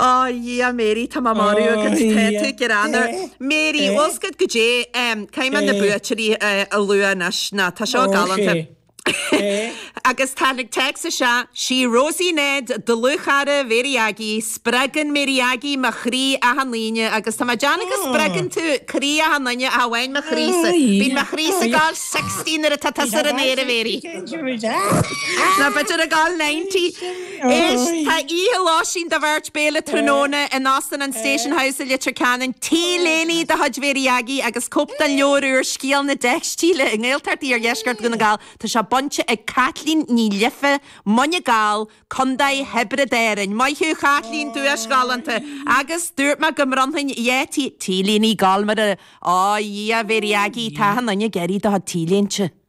Ó Dhia, Mary, tá mé marbh agat. Tá tú gránna. Mary, fhios agat goidé, caithfidh mé na buaiteoirí a lua anois. Now, tá seo galánta. Agus tháinig téacs isteach, Sí Rosie Ned, dlúthchara Mary Aggie, spreagann Mary Aggie mo chroí achan Aoine agus tá mé ag déanamh go spreagann tú croí achan duine, chan amháin mo chroí-sa. Bíonn mo chroí-sa ag gabháil sixty nuair atá tusa ar an aer, a Mary. Nó b'fhéidir ag gabháil ninety. Anois tá oíche lóistín do bheirt béile tráthnóna in Óstán an Station House i Leitir Ceanainn, T-léine de chuid Mhéirí Aggie agus cóip den leabhar úr Scéal na dTeicstíle i nGaeltacht Iardheisceart Dhún na nGall. Tá sé bainte ag Caitlín Ní Liofa, Muine Gall, Co. Thiobraid Árainn. Maith thú Chaitlín, duais ghalánta! Agus dúirt mé go mbronnfainn dhá T-léine Gall mar a. Ó, a Dhia, a Mhéirí Aggie, tá achan duine ag iarraidh do chuid T-léinte!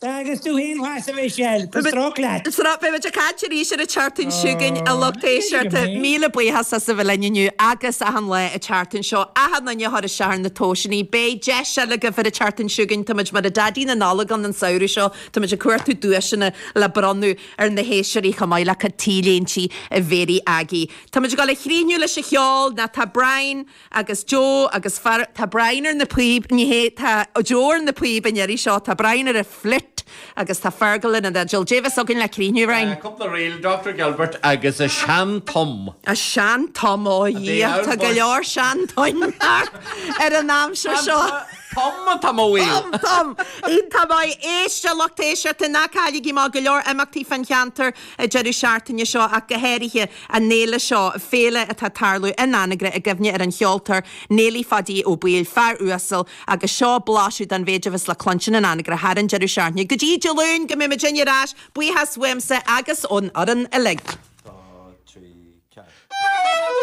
Tá agus tú fhéin mhaith sa bhreis air, tá stróc leat. Sruth, Beidh muid ag caint arís ar an tseachtain seo chugainn a lucht éisteachta. Míle buíochas as a bheith linn inniu agus achan lá an tseachtain seo. Achan duine a chuir isteach ar na tomhaiseannaí. Beidh deis eile agaibh ar an tseachtain seo chugainn. Táimid mar a bheadh Daidí na Nollag ann an samhradh seo. Táimid ag cuartú duaiseanna le bronnadh ar na héisteoirí chomh maith le cuid T-léintí Mhéirí Aggie. Táimid ag dul a chríochnú leis an cheol. Now tá Brian. agus Joe agus Fergal. Tá Brian ar na píb Ní hé Tá Joe ar na píb an iarraidh seo Tá Brian ar an fhliúit agus tá Fergal ar an fhidil Dé bheas againn le críochnú roinn. Cúpla ríl, Doctor Gilbert agus An Seantom. An Seantom Ó Dhia tá go leor seantoim thart ar an aimsir seo. Tom an Tom Ó Aoil. Tom Tom. Iontach maith. Éist, a lucht éisteachta ná cailligí, tá go leor imeachtaí fan cheantar. an deireadh seachtaine seo ach go háirithe, an fhéile seo, féile atá ag tarlú in Anagaire i gcuimhne ar an cheoltóir Néilí Pháidí Ó Baoill, fear uasal, agus seo blaiseadh den mhéid a bheas le cluinstin in Anagaire thar an deireadh seachtaine go dtí Dé Luain go mbeidh muidinne ar ais, buíochas uaimse agus ón fhoireann uilig. 2 3 4.